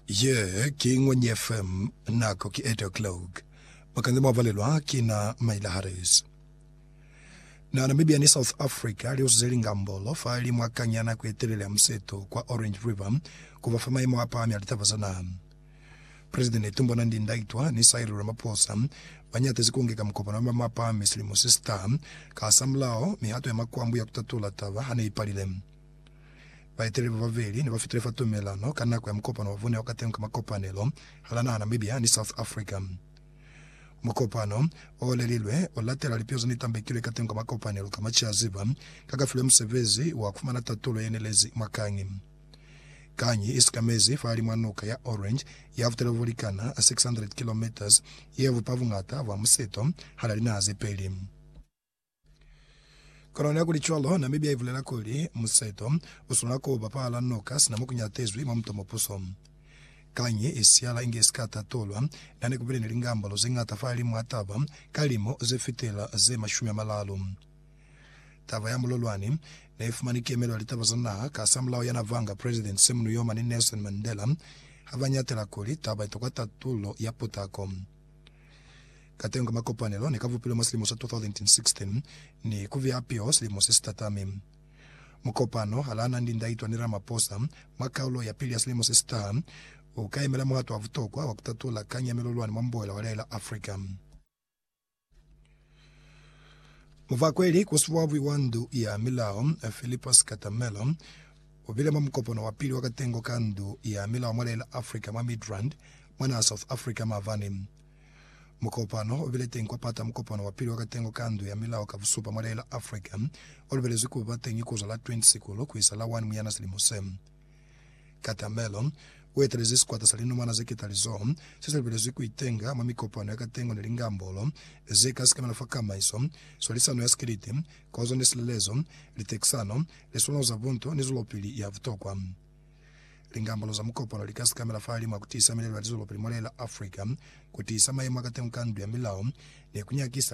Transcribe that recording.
Ye ki Ngwenye FM, nako ki 8 o'clock. Mukanze mwa valelwa ki na Maila Harris. Na Namibia ni South Africa li usize lingambolo fa li mwa kang ya nako ye telele ya museto kwa Orange River ku ba fa mayemo a pahami a litaba za naha. President Netumbo Nandi Ndaitwa ni Cyril Ramaphosa ba nyatezi ku ngeka mukopano wa mayemo a pahami silimo se si taha. Ka hasamulaho, mihato ya makwambu ya ku tatula taba ha ne i palile. Baeteli ba babeli ne ba fitile fa tumelano ka nako ya mukopano wa bona wa kateñi ka makopanelo hala naha Namibia ni South Africa. Mukopano o olelilwe o latela lipio ze ne tambekilwe kateñi ka makopanelo ka maciaziba ka ka filwe musebezi wa ku fumana tatulo ye nelezi mwa kangi. Kangi i sikamezi fahalimw'a nuka ya Orange ya futela bo likana 600 kilometres ye bupa buñata bwa museto hala linaha ze peli. Kono nihakulicwalo, Namibia ibulela kuli, Museto uswanela kuba pala noka sina mokunyatezwi mwa muto mupuso. Kanyi isihala inge isika tatulwa, nihane kubile ni lingambolo zeñata fahalimu ha taba ka limo zefitela ze mashumi amalalu. Taba ya mulolwani neifumani kemelo ya litaba za naha ka hasamulaho ya navanga President Sam Nujoma ni Nelson Mandela, habanyatela kuli taba itokwa tatulo ya putako. Katengo ka makopanelo ne ka bupilwe mwa silimo sa 2016 ni ku biha piho silimo se si tatami. Mukopano ha Lana ni Lindaitwa ni Ramaphosa mwa kaulo ya pili ya silimo se si taha u ka yemela muhato wa butokwa wa ku tatula kanyamelo lwani mwa mboela wa Laela Africa. Muvakweli koswabi wa Ndu ya Milao, Philippos Katamelo, ubile mwa mukopano wa pili wa katengo ka Ndu ya Milao mwa Leila Africa mwa Midrand, mwa naha South Africa maabani. Mukopano ubile teñi kwa pata mukopano wa pili wa katengo ka Ndu ya Milao ka busupa mwa Leila Africa, olubelezwi kuba teñi kuzwa la 20 Sikulu kuisa la 1 Muyana silimo se. Katamelo, U etelezi sikwata sa linomana ze ketalizoho se se lubelezwi ku itenga mwa mikopano ya katengo ni lingambolo ze ka sikemela fa kamaiso, swalisano ya sikiliti, kozo ni silelezo, litekisano, liswalo za bunto ni zwelopili ya butokwa. Lingambolo za mukopano li ka sikamela fahalimw'a ku tiisa milelo ya lizwelopili mwa lee la Africa, ku tiisa mayemo a katengo ka ndu ya milao, ni ku nyakisa